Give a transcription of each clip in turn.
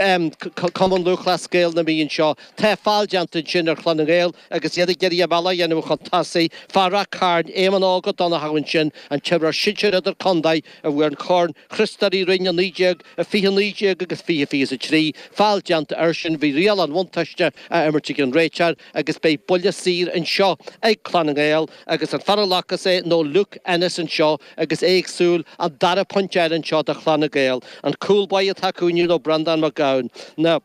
Cumann Lúthchleas Gael na Mí anseo. Tá feall déanta ansin ar Chlann na nGael agus iad ag iarraidh a mbealach a dhéanamh chun tosaigh. Fear Ráth Chairn, Éamonn Óg Ó Donnchadha ansin, an t-imreoir sinsir idir-contae a bhuaigh an Corn Chriostóir Uí Rinn i 19 i 20 19 agus 20 23. Feall déanta airsean. Bhí riail an bhuntáiste á imirt ag an réiteoir agus beidh buille saor anseo ag Clann na nGael agus an fear a ghlacas é nó Luke Ennis anseo, agus é ag súil an dara pointe a fháil anseo do Chlanna Gael. An cúl báire atá acu inniu nó Breandán Mac Gabhann na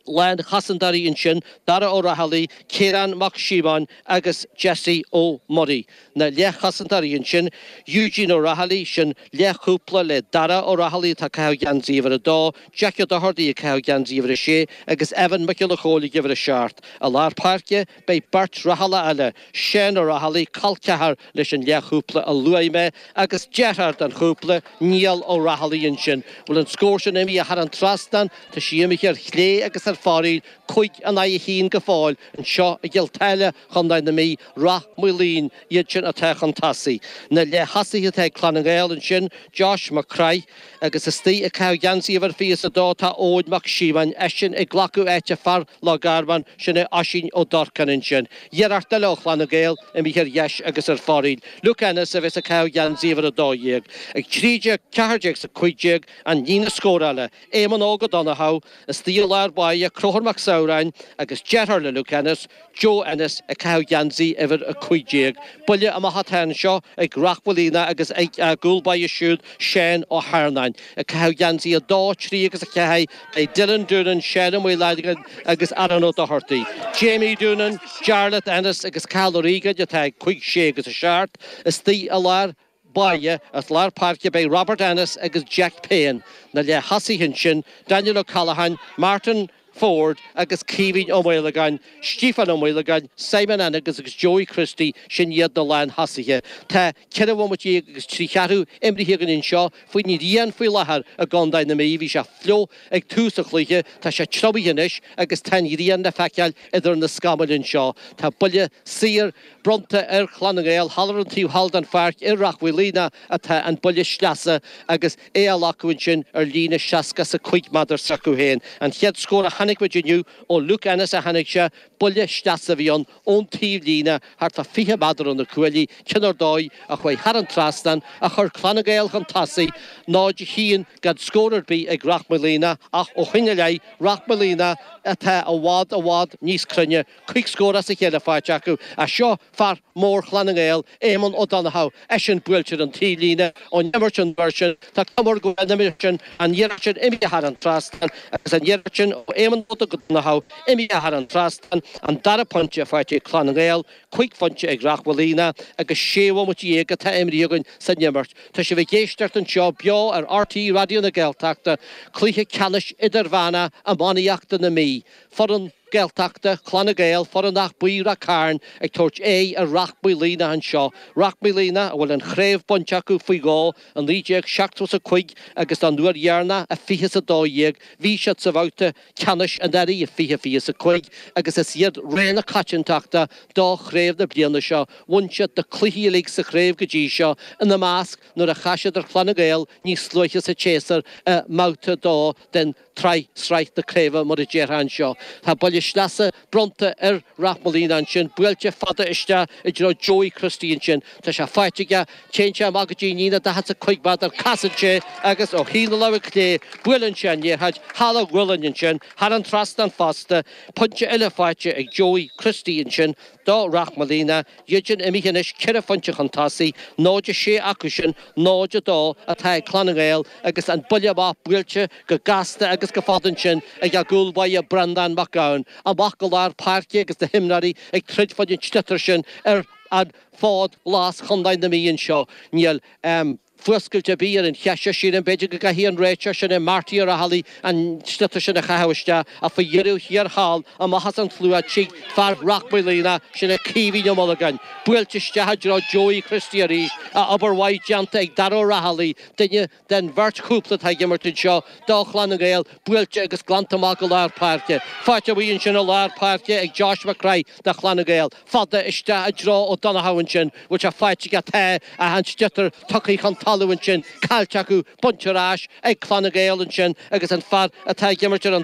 lánchosantóirí ansin Dara Ó Raghallaigh, Ciarán Mac Síomóin agus Jesse Ó Muirí na leathchosantóirí ansin Eugene Ó Raghallaigh, sin leathchúpla le Dara Ó Raghallaigh atá ag caitheamh geansaí uimhir a dó, Jackie Ó Dochartaigh ag caitheamh geansaí uimhir a sé agus Evan Mac Giolla Chomhaill ag uimhir a seacht. I lár páirce. Beidh beirt Raghallach eile, Seán Ó Raghallaigh, col ceathar leis an leathchúpla a luaigh mé, agus deartháir den chúpla, Niall Ó Raghallaigh ansin. Bhfuil an scór sin imithe thar an trasnán, tá sí imithe ar chlé agus ar fóraoil, cúig in aghaidh an chinn go fóill anseo i gCill Táile, Chontae na Mí, Rath Maoilín iad sin atá chun tosaigh. Na leath thosaithe atá ag Clann na nGael ansin, Josh Mac Craith, Agus istigh ag caitheamh geansaí uimhir 22 tá Eoin Mac Síomóin, eisean ag glacadh áite fear Loch Garman, sin é Oisín Ó Durcáin ansin. Iarracht eile ó Chlann na nGael imithe ar dheis agus ar fóraoil. Luke Ennis a bheas ag caitheamh geansaí uimhir 12. 13, 14 is 15 an líne scórála, Éamonn Óg Ó Donnchadha istigh i lár báire, Conchúr Mac Samhráin agus deartháir le Luke Ennis, Joe Ennis ag caitheamh geansaí uimhir a cúig déag. Buille amach atá anseo ag Rath Mhaoilíona agus ag a gcúl báire siúd Seán Ó hEarnáin. Ag caitheamh geansaí a dó, a trí agus a ceathair beidh Dylan Doonan, Seán Ó Maolagáin agus Aaron Ó Dochartaigh. Jamie Doonan, Jarlath Ennis agus Cathal Ó Riagáin atá ag cúig, sé agus a seacht. Istigh i lár. báire. Ar lár páirce beidh Robert Ennis agus Jack Payne, na leath thosaithe ansin Daniel O'Callaghan, Martin Forde agus Caoimhín Ó Maolagáin, Stíofán Ó Maolagáin, Simon Ennis agus Joey Christie sin iad na lánthosaithe. Tá ceithre bhomaite dhéag agus trí cheathrú imrithe againn anseo faoin ghrian faoi láthair i gContae na Mí. Bhí sé fliuch ag tús an chluiche, tá sé triomaithe anois agus tá an ghrian le feiceáil idir na scamaill anseo. Tá buille saor. Bronnta ar Chlann na nGael, thall ar an taobh thall den pháirc ag Rath Mhaoilíona atá an buille sleasa agus é á ghlacadh ansin ar líne 60 is a cúig méadar s'acu féin. An chéad scór a chonaic muid inniu ó Luke Ennis a tháinig sé, buille sleasa a bhí ann ón taobh líne thart fá 20 méadar ó na cuaillí, cionn ar dóigh a chuaigh thar an trasnán, a chuir Clann na nGael chun tosaigh, 0-1 gan scór ar bith ag Rath Maoilíona, ach ó shoin i leith, Rath Maoilíona atá i bhfad, i bhfad níos cruinne cúig scór as a chéile faighte acu as seo fear mór Chlann na nGael, Éamonn Ó Donnacha, eisean buailte ar an taobhlíne ón imirt an uair sin. Tá cuma air go bhfuil an imirt sin an iarracht sin imithe thar an trasnán agus an iarracht sin ó Éamonn Óg Ó Donnacha imithe thar an trasnán. An dara pointe faighte ag Clann na nGael, cúig phointe ag Ráth Maolíona agus sé bhomaite dhéag atá imrithe againn san imirt. Tá sibh ag éisteacht anseo beo ar RTÉ Raidió na Gaeltachta, cluiche ceannais idirmheánach iománaíochta na Mí, foireann. Gaeltachta, Clann na nGael, foireann Áth Buí Ráth Cairn ag tabhairt aghaidh ar Ráth Maolíona anseo, Ráth Maolíona a bhfuil an chraobh bainte acu faoi dhó, i 1975 agus don uair dheireanach i fiche is a dó dhéag bhí siad sa bhabhta ceannais anuraidh i fiche fiche is a cúig agus is iad rogha na coitiantachta do chraobh na bliana seo. Bhain siad na cluichí uilig sa chraobh go dtí seo, ina measc nuair a chas siad ar Chlann na nGael níos luaithe sa tséasúr i mbabhta a dó den tsraith, sraith na craoibhe mar a déarfá anseo. Tá buille sleasa bronnta ar Ráth Maolíona ansin, buailte fada isteach i dtreo Joey Christie ansin, tá sé faighte aige, téann sé amach go dtí an líne daichead 's a cúig mhéadar, casann sé agus ó thaobh na láimhe clé buaileann sé an liathróid thar a ghualainn ansin, thar an trasnán fosta, pointe eile faighte ag Joey Christie ansin. do Ráth Maolíona, iadsan imithe anois ceithre phointe chun tosaigh, 0-6 acusan 0-2 atá ag Clann na nGael agus an buille amach buailte go gasta agus go fada ansin ag a gcúl báire Breandán Mac Gabhann, amach go lár páirce agus na himreoirí ag troid fá an sliotar sin ar an fhód ghlas Chontae na Mí anseo. Níl. Fuascailt ar bith ar an cheist seo, sílim. B'fhéidir go gcaithfidh an réiteoir sin Marty Ó Raghallaigh an sliotar sin a chaitheamh isteach, ach faoi dheireadh thiar thall, amach as an tslua tig fear Ráth Maolíona, sin é Caoimhín Ó Maolagáin, buailte isteach i dtreo Joey Christie arís, a obair mhaith déanta ag Dáire Ó Raghallaigh, duine den bheirt chúpla atá ag imirt anseo do Chlann na nGael, buailte agus glanta amach go lár páirce. Faighte go maith ansin i lár páirce ag Josh Mac Craith do Chlann na nGael. fada isteach i dtreo Ó Donnacha ansin, bhfuil sé faighte aige tá ach tá an sliotar tugtha chun talamh ansin, caillte acu, bainte ar ais ag Clann na nGael ansin agus an fear atá ag imirt ar an.